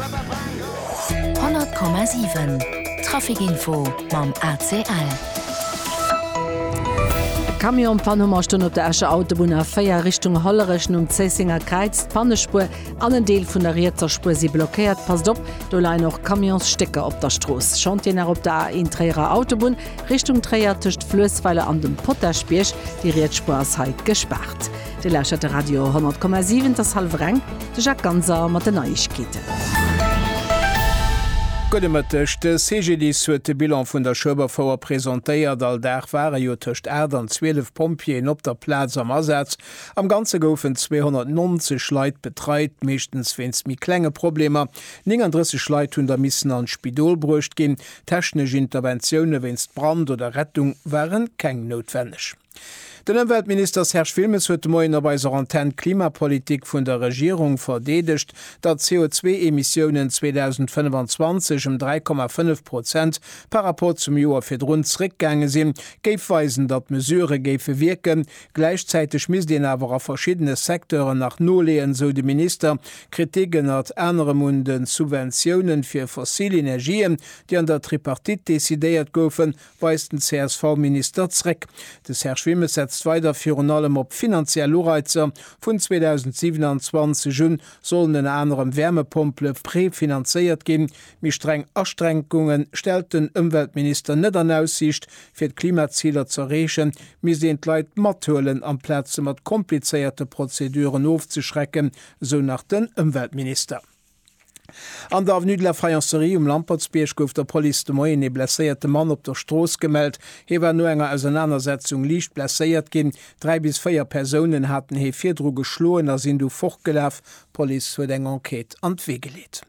100,7 Trafic Info mam ACL. Camion Panne um Astënn op der Escher Autobunn A4 Richtung Hollerech nom Zéissenger Kräiz. D'Pannespuer an en Deel vun der rietser Spuer si blockéiert. Passt op, do leien och Camionsstécker op der Strooss. Chantieren nach op der A1 Tréierer Autobunn Richtung Tréier tëscht Fluessweiler an dem Potaschbierg. Déi riets Spuer ass hei gespaart. Dir lauschtert de Radio 10,7, et ass hallwer eng, de Jacques Ganser mat den Neiegkeeten. Gudde Mëtteg, De CGDIS huet de Bilan vun der Schueberfouer presentéiert. All Dag ware jo tëscht 8 an 12 Pompjeeën op der Plaz am Asaz. Am Ganze goufen 290 Leit betreit, meeschtens wéinst méi klenge Problemer. 39 Leit hunn da missen an d'Spidol bruecht ginn. Technesch Interventioune wéinst Brand oder Rettung ware keng noutwenneg. Den Ëmweltminister Serge Wilmes huet de Moien op eiser Antenn d'Klimapolitik vun der Regierung verdeedegt, datt d'CO2-Emissiounen 2025 ëm 3,5 Prozent par Rapport zum Joer virdrun zeréckgaange sinn, géif weisen, datt d'Mesurë géife wierken. Gläichzäiteg misst een awer a verschiddene Secteuren nach noleeën, esou de Minister. Kritik ënnert anerem un de Subventiounen fir fossil Energien, déi an der Tripartite decidéiert goufen, weist den CSV-Minister zréck. De Serge Wimmes setzt weider virun allem op finanziell Ureizer, Vun 2027 un sollen ënner anerem Wärmepompele prefinanzéiert ginn. Méi streng Aschränkunge stellt den Ëmweltminister net an Aussiicht. Fir d'Klimaziler ze erreechen, misst een d'Leit mathuelen, amplaz se mat komplizéierte Prozeduren ofzeschrecken, esou nach den Ëmweltminister. An der Avenue de la Faïencerie um Lampertsbierg gouf der Police de Moien ee blesséierte Mann op der Strooss gemellt. Hie war no enger Ausernanersetzung liicht blesséiert ginn. Dräi bis véier Persounen haten hie virdru geschloen a sinn du fortgelaf. D'Police huet eng Enquête an d'Wee geleet.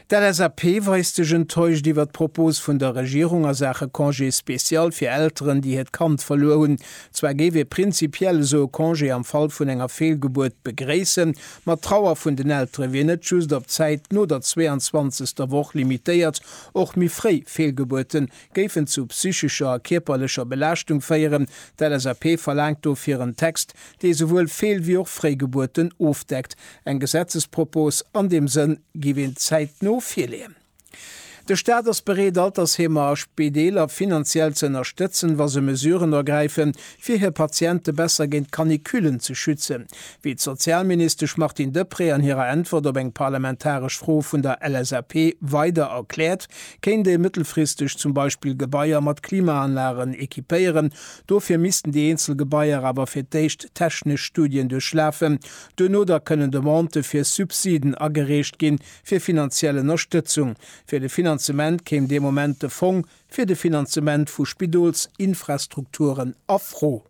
D'LSAP weist sech enttäuscht iwwert d'Propos vun der Regierung a Saache Congé spécial fir Elteren, déi hiert Kand verluer hunn. Zwar géif ee prinzipiell esou e Congé am Fall vun enger Feelgebuert begréissen, Ma d'Trauer vun den Eltere wier net just op d'Zäit no der 22. Woch limitéiert. Och méi fréi Feelgebuerte géifen zu psychescher a kierperlecher Belaaschtung féieren. D'LSAP verlaangt dofir en Text, dee esouwuel Feel wéi och Fréigebuerten ofdeckt. Eng Gesetzespropos an deem Sënn giff een zäitno virleeën. De Staat ass bereet, Altersheemer a Spideeler finanziell ze ënnerstëtzen, wa se Mesuren ergräifen, fir hir Patiente besser géint d'Canicullen ze schützen, wéi d'Sozialministesch Martine Deprez an hirer Äntwert op eng parlamentaresch Fro vun der LSAP weider erkläert, kéint ee mëttelfristeg zum Beispill Gebaier mat Klimaanlagen equipéieren. Dofir missten déi eenzel Gebaier awer fir d'éischt technesch Studien duerchlafen. Duerno da kënnen Demandë fir Subsiden agereecht ginn. fir finanziell Ënnerstëtzung. Fir de Finanzement kéim dee Moment de Fong fir de Finanzement vu Spidolsinfrastrukturen a Fro.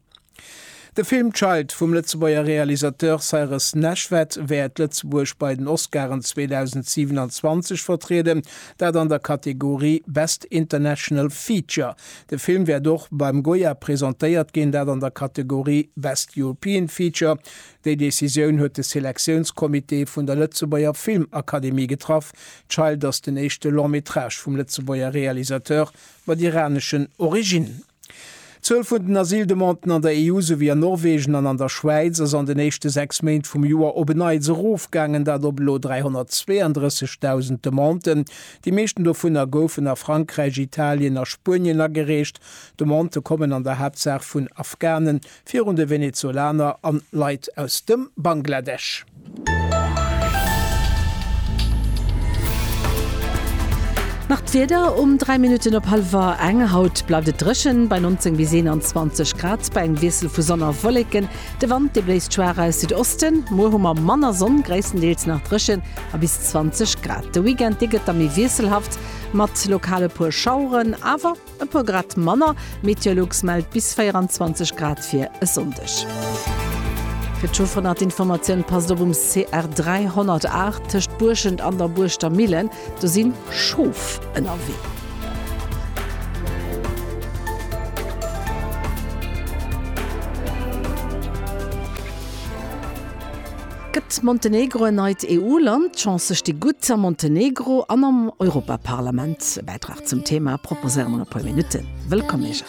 De Film Child vum Lëtzebuerger Realisateur Cyrus Neshvad wäert Lëtzebuerg bei den Oscaren 2027 vertrieden, dat an der Kategorie Best International Feature. De Film wäert och beim Goya presentéiert ginn, dat an der Kategorie Best European Feature, Déi Decisioun huet de Selektiounscomité vun der Lëtzebuerger Filmakademie getraff. Child ass den éischte Long-métrage vum Lëtzebuerger Realisateur mat iraneschen Originnen. D'Zuel vun den Asyldemanden an der EU souwéi an Norwegen an an der Schwäiz ass an den éischte sechs Méint vum Joer op en Neits erofgaangen, dat op elo 332.000 Demanden. Déi meeschten dovunner goufen a Frankräich, Italien a Spuenien agereecht. Demandë kommen an der Haaptsaach vun Afghanen, Virun de Venezolaner an Leit aus dem Bangladesch. Nach d'Wieder um 3 Minutten op halwer eng. Haut bleift et dréchen, bei 19 bis 21 Grad, bei engem Wiessel vu Sonn a Wolleken. De Wand, dee bléist schwaach aus Südosten. Muer hu mer manner Sonn, gréisstendeels nach dréchen a bis 20 Grad. De Weekend, dee gëtt da méi wiesselhaft, mat lokal e puer Schaueren, awer. E puer Grad manner. Meteolux mellt bis 24 Grad fir e Sonndeg. Fir d'Schofernatinformatioun passt op um CR 308 tëscht Buerschent an der Buurschter Millen, do si Schof ënnerwee. Gëtt Montenegro en neit EU-Land? D'Chancë sti gutt a Montenegro an am Europaparlament. E Bäitrag zum Thema proposéiere mer an e puer Minutten. Wëllkomm, Mejan!